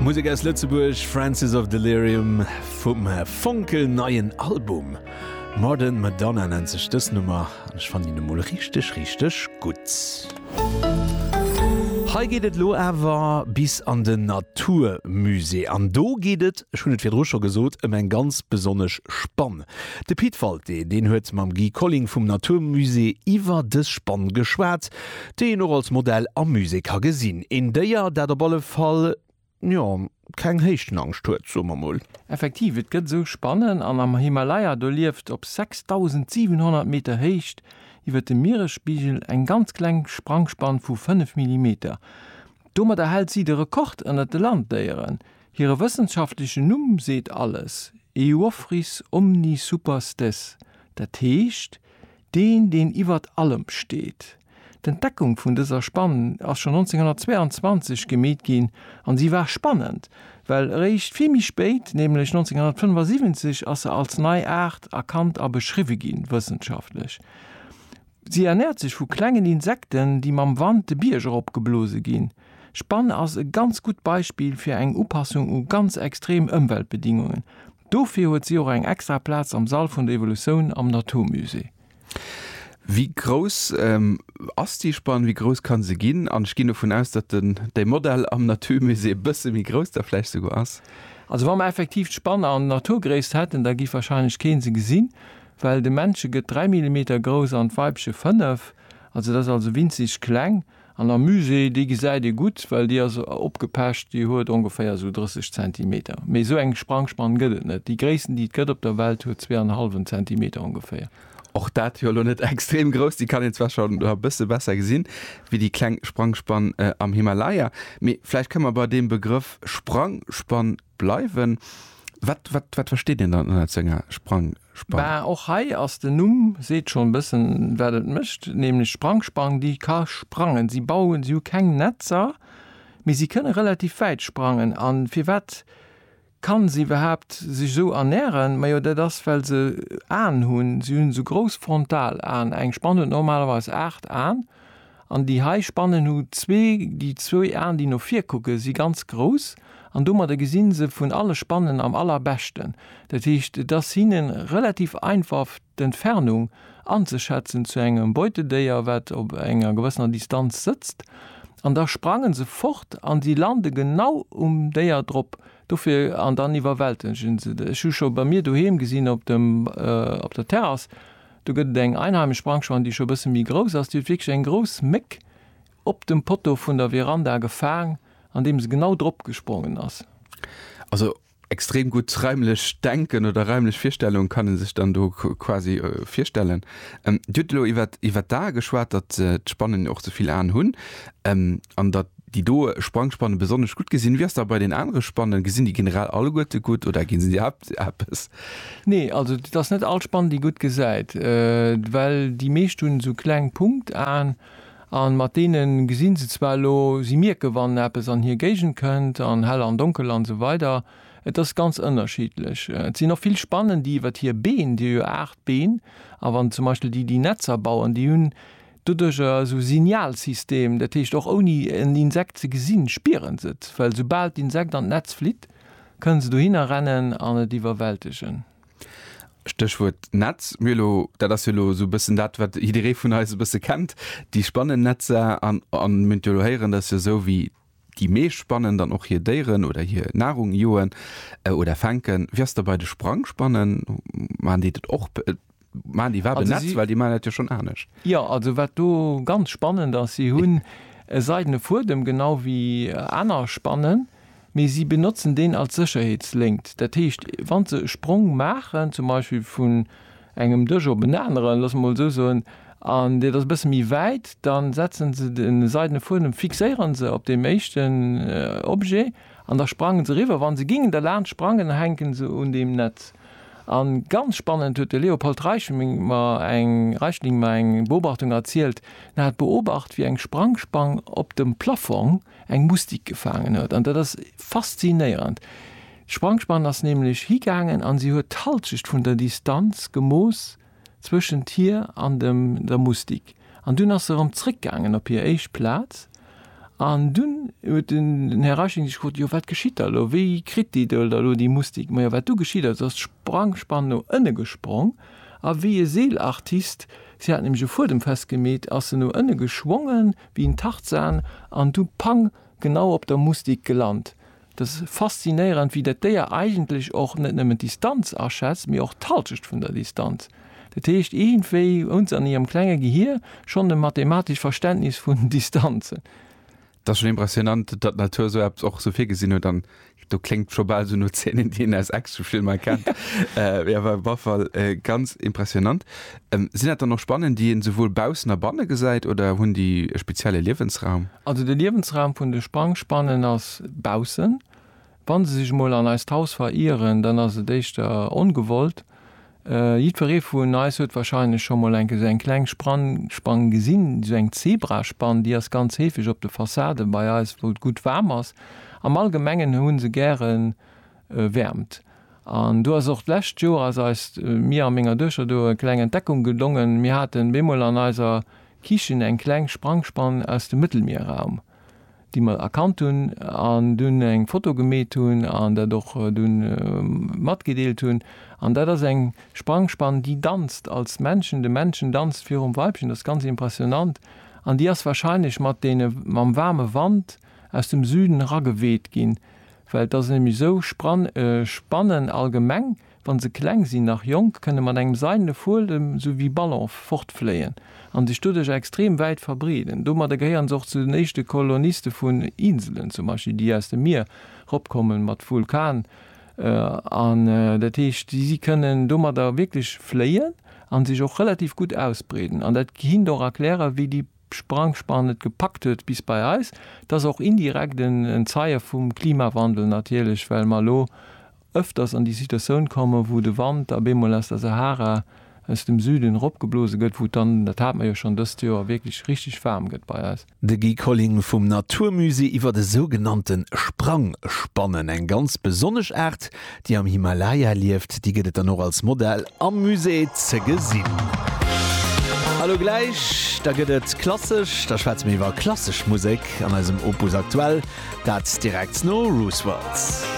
Musek aus Lëtzebuerg, Francis of Delirium vum fonkel neien Album. Modern Madonna nennt sech dës Nummer an ech fannen déi emol richteg richteg gutt. Hei geet et elo awer bis an den Naturmusée an do geet et, ech hunn et virdru scho gesot, ëm eng ganz besonnesch Spann. De Pit Walté, deen huet mam Guy Colling vum Naturmusée iwwer dës Spann geschwat. Déi een och als Modell am Musée ka gesinn. Een Déier, dat op alle Fall, jo, keng Héichtenangscht huet, soe mer mol. Effektiv, et gëtt esou Spannen. An am Himalaya, do lieft op 6.700 Meter Héicht iwwer dem Mieresspigel eng ganz kleng Sprangspann vu 5 Millimeter. Domadder hält si de Rekord ënner de Landdéieren. Hire wëssenschaftlechen Numm seet alles, Euophrys omnisuperstes, dat heescht, deen, deen iwwert allem steet. D'Entdeckung vun dëser Spann ass schonn 1922 gemeet ginn an si war spannend, well eréischt vill méi spéit, nämlech 1975, ass se als nei Aart erkannt a beschriwwe ginn, wëssenschaftlech. Si ernäert sech vu klengen Insekten, déi mam Wand de Bierg erop geblose ginn. D'Spann ass e ganz gutt Beispill fir eng Upassung u ganz extrem Ëmweltbedingungen. Dofir huet si och eng extra Plaz am Sall vun der Evolutioun am Naturmusée. Wéi grouss ass déi Spann? Wéi grouss kann se ginn? An ech ginn dovun aus, datt den däi Modell am Naturmusée e bësse méi grouss da vläicht souguer ass. Also wa mer effektiv d'Spann an Naturgréisst hätten, da géif warscheinlech kee se gesinn, well de Männche gëtt 3 Millimeter grouss an d'Weibche 5. Also dat ass also winzeg kleng. An der Muse, déi gesäit ee gutt, well déi ass opgepecht, déi huet ongeféier esou 30 Zentimeter. Mee esou eng Sprangspann gëtt et net. Déi gréissten, déi et gëtt op der Welt, huet zwee an e hallwen Zentimeter ongeféier. Och dat jo elo net extrem grouss, déi kann een zwar scho nach e bësse besser gesinn wéi déi kleng Sprangspann am Himalaya. Mee vläicht kënne mer bei deem Begrëff Sprangspann bleiwen. Wat, wat, wat versteet een dann ënnert esou enger Sprangspann? Bah, och hei ass den Numm seet schon bëssen wat et mécht, nämlech Sprangspang, déi ka sprangen. Si bauen, si hu keng Netzer, mee si kënne relativ wäit sprangen. A firwat kann se iwwerhaapt sech esou ernähren? Majo dat ass well se Aen hunn, si hunn esou grouss Frontalaen. Eng Spann huet normalerweis 8 Aen. An déi hei Spannen hu zwee, déi zwou Aen déi no vir kucken, si ganz grouss an domadder gesi se vun alle Spannen am allerbeschten. Dat heescht et ass hinne relativ einfaf d'Entfernung anzeschätzen zu engem Beutedéier wat op enger gewëssener Distanz sëtzt an da sprangen se fort an si lande genau um Déier drop dofir an dann iwwerwältegen se et. Ech hu scho bei mir doheem gesinn op dem op der Terrass, Do gëtt et eng einheimisch Brankschwein, déi scho e bësse méi grouss ass. Déi huet wierklech eng grouss Méck op dem Poteau vun der Veranda gefaang, an deem se genau drop gesprongen ass. Also extrem gutt raimlech Denken oder raimlech Virstellung kann e sech dann do quasi virstellen. Dir hutt elo iwwert d'Ae geschwat, datt d'Spannen och ze vill Aen hunn an datt Déi do Sprangspannen besonnesch gutt gesinn. Wéi ass dat bei den anere Spannen? Gesinn déi generell alleguerte gutt oder ginn se iwwerhaapt eppes? Nee, also et ass net all Spann déi gutt gesäit, well déi meescht hunn esou kleng Punktaen a mat deene gesinn se zwar elo, si mierke wann eppes an hir Géigend kënnt an hell an donkel an esou weider. Et ass ganz ënnerschiddlech. Et sinn och vill Spannen déi iwwert hir Been, déi hu jo 8 Been, a wann zum Beispill déi déi Netzer bauen, déi hunn, Doduerch ass e Signalsystem, dat heescht och ouni en Insekt ze gesinn, spieren se et, well soubal d'Insekt an d'Netz flitt, kënne se dohinner rennen an et iwwerwältegen. Stéchwuert Netz, mir elo, dat ass jo elo esou e bëssen dat, wat jidderee vun eis e bësse kennt, déi Spannennetzer. An mir hunn et jo elo héieren, dat ass jo esou wéi Déi meescht spannen dann och hir Déieren oder hir Nahrung, joen oder fänken. Wéi ass da bei de Sprangspannen? Maachen déi dat och? Maachen déi iwwerhaapt en Netz? Well déi maachen dat jo schonn anescht. Jo, also wat do ganz spannend ass, si hunn e seidene Fuedem, genau wéi aner Spannen, mee si benotzen deen als Sécherheetsléngt. Dat heescht, wa se e Sprong maachen, zum Beispill vun engem Dësch op en aneren, loosse mer mol esou soen, an deet ass e bësse méi wäit, da setze se de seidene Fuedem, fixéiere se op deem éischten Objet an da sprange se eriwwer. Wa se gingen derlaanscht sprangen, da hänke se un deem Netz. A ganz spannend huet de Leopold Reichling mer eng Reichling mer eng Beobachtung erzielt, en hat beobacht, wéi eng Sprangspang op dem Plaffong, eng Mustik gefaangen huet. An dat ass faszinéierend. D'Sprangspann ass nämlech higaangen an si huet d'Halschecht vun der Distanz gemooss zwëschent hir an dem der Mustik. An dunn ass se erëm zréckgaangen op hir éischt Plaz. An dunn huet den Här Reichling sech gefrot, jo wat geschitt da elo? Wéi kritt déi Döll da elo déi Mustik? Majo wat du geschitt ass, ass d'Sprangspann no ënne gesprong a wéi e Seelartist, si hat nämlech e Fuedem festgemeet, ass se no ënne geschwongen, Wéi en Tarzan an du pang genau op der Mustik gelant. Et ass faszinéierend, wéi dat Déier eigentlech och net nëmmen d'Distanz aschätzt, mee och d'Halschecht vun der Distanz. Dat heescht, iergendwéi hunn se an hirem klenge Gehir schonn e mathematescht Verständnis vun Distanzen. Et ass schonn impressionant, datt d'Natur esou eppes och esou virgesinn huet an do klingt schon bal so no Szenen, déi een aus Actionfilmer kennt. äh, ja, war auf Fall äh, ganz impressionant. Ähm, sinn dat dann noch Spannen, déi een sowohl baussen a banne gesäit oder hunn déi e spezielle Liewensraum? Also de Liewensraum vun de Sprangspannen ass baussen. Wann se sech mol an eist Haus verieren, dann ass et éischter ongewollt. Jiddweree vun eis huet warscheinlech scho mol enke sou eng kleng Spann gesinn, sou eng Zebraspann. Déi ass ganz heefeg op de Fassaden bei eis, wou et gutt waarm ass. Am Allgemengen hu se gäre Wäermt. An do ass och d'lescht Joer ass eis, mir a menger Duechter do, e kleng Entdeckung gelongen, Mir haten bemol an eiser Kichen eng kleng Sprangspann aus dem Mëttelmierraum. déi mer erkannt hunn an dunn eng Foto gemeet hunn an dat och dunn matgedeelt hunn. An dat ass eng Sprangspann, déi danzt als Männchen, de Männchen danzt virum Weibchen, dat ass ganz impressionant, an déi ass wahrscheinlech mat deene, mam waarme Wand aus dem Süden erageweet ginn, well et ass nämlech esou, Spann, Spannen allgemeng, Wann se kleng sinn, nach jonk, kënne mat engem seidene Fuedem, sou wéi Ballonf, fortfléien an sech doduerch extrem wäit verbreeden. Domadder gehéieren se och zu den éischte Koloniste vun Inselen, zum Beispill, déi aus dem Mier ropkommen, mat Vulkan an. Dat heescht, si kënnen domadder wierklech fléien an sech och relativ gutt ausbreeden. An dat gehinnt och erklären, wéi déi Sprangspan et gepackt huet bis bei eis. Et ass och indirekt en Zeie vum Klimawandel natierlech, well mer elo ëfters an déi Situatioun komme wou de Wand da bemol aus der Sahara aus dem Süden eropgeblose gëtt, wou et dann, dat hate mer jo schonn dëst Joer, wierklech richteg waarm gëtt bei eis. De Guy Colling vum Naturmusée iwwer e sougenannte Sprangspannen, eng ganz besonnesch Aart, déi am Himalaya lieft. Déi gëtt et dann och als Modell am Musée ze gesinn. A lo gläich, da gëtt et klassesch, da schwätze mir iwwer klassesch Musek an eisem Opus Aktuell, dat direkt no Roosevelt.